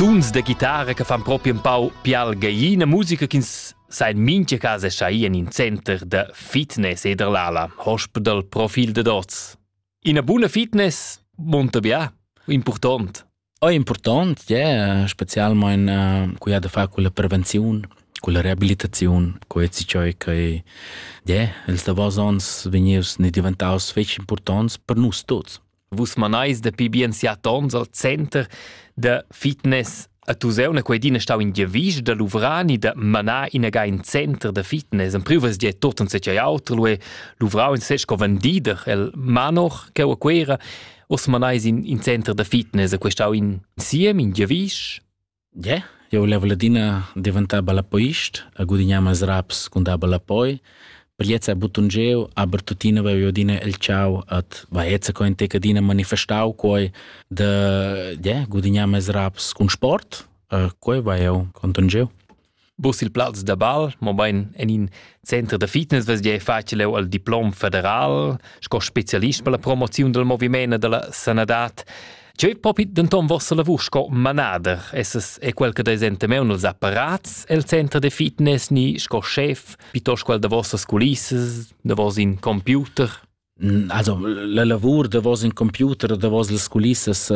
Tuns da guitara che fan propi un pau pial gallina, musica ch'ins sa in mincha cas è schai en in center da fitness e der l'ala, hospital profil de dots. Ina buna fitness monta bia, important. È important, yeah, specialmein uh, cu ha da far con la prevenzione, con la rehabilitazione, con ezi ciò che yeah, ils davos ons vegnius ne diventaus fetg importants per nus tuts. Vus manais dapi bien siat ons al center da fitness a Tuseuna quei din stau in giavisch da Luvrani da manar inaga in center da fitness. En privas di tot en secei auter lu e Luvrau in sesco vendider el Manor che a Quera. Os manais in, in center da fitness a questau in siem in giavisch? Ie, jeu level adina daventar ballapeist e gudignar meis raps cun dar ballapoi. Per gliez ha buttun jeu, aber tuttina vev'jeu adina el tgau et va eza co in tec adina manifestau quei da ie, gudignar meis raps cun sport e quei va jeu contun jeu. Bus il plaz da bal, mobain en in center da fitness vesgei facil leu al diplom federal sco specialist per la promoziun del moviment e della sanadad. Cheu ei propi denton vossa lavur sco manader, esses è quel che desenta meu nels apparats el center de fitness ni sco chef, piuttosto quel da vossas culissas, da vos in computer. Also la lavur davos in computer o davos las culissas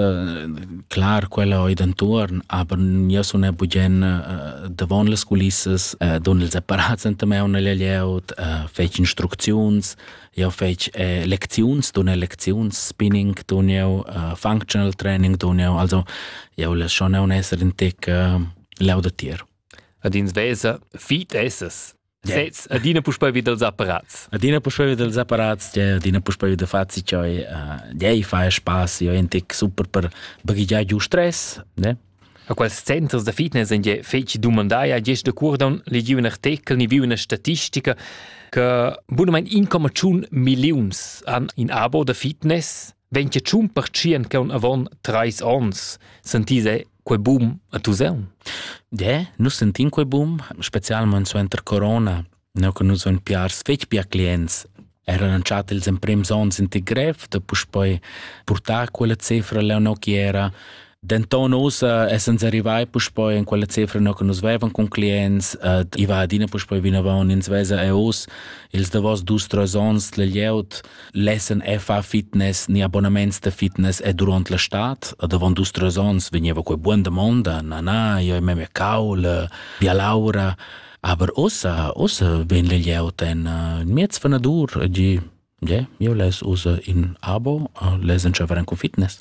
clar quella oi d'antuorn, aber jeu sun er bugen davon las culissas, dun ils apparats enta maun alla glieud, fetsch instrucziuns, jeu fetsch lecziuns, dun lecziuns, spinning dun jeu, functional training dun jeu, also jeu less schon aun esser in tec laudatir. Ad ins vesa, fit essas. Sez, adina puspei vi dals apparats. Adina puspei vi dals apparats, adina puspei vi da fazi cioi, dei fa spaß, io è super per baghegiar giu stress, ne? A quels centers da fitness en je feci dumandaia gest de curdon legiu un artikel ni viu una statistica che bunamein 1,1 milliuns han in abo da fitness vegn che tschun pertschien che un avon treis ons sentise quei boom a Tuseun? De, nus sentin quei boom, specialment suenter corona, no che nus on piars fetg pia clients Era lanciat ils emprems onns in ti grev da puspoi purtar quella cifra leo no chi era Denton ussa essens arrivai puspei en quella cifra no che nus vevan con clients, uh, i va adina puspei vinavon, ins vesa e us ils davos dus tres ons le glieud lessen fa fitness ni abonnements de fitness e durant la stat, davon dus tres ons veniva quei buon domanda, na na, io me caul, via laura, aber ussa ussa ven le glieud en uh, miez vanadur, di, yeah, io les usa in abo, les enchaveran con fitness.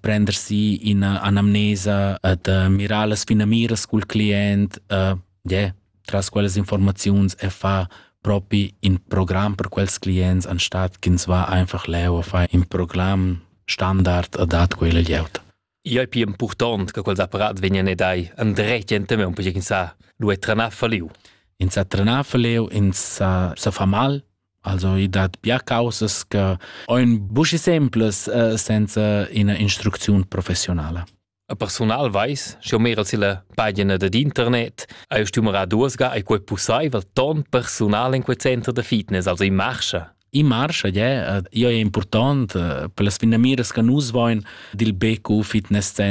prender si ina anamnesa et uh, mirar las finamiras col client uh, yeah, tras quelles informazions e fa propi in programm per quels clients anstatt ch'ins va einfach leu a fare in programm standard a dat quella glieud. I è più importante che quels apparat vengano dai andretti in tema un po' che sa lo è tranà faliu. In sa tranà faliu, in sa, sa fa mal, Also i dat bia causas che ein buca semplas uh, senza ina instrucziun professionala. A personal weiß, sche mera silla pagina dad internet, hai stumera duosga ai quei pussaivel ton personal in quei center da fitness, also in marcha. In marcha, yeah, io è important per las finamiras che nus voin dil BQ Fitness Center.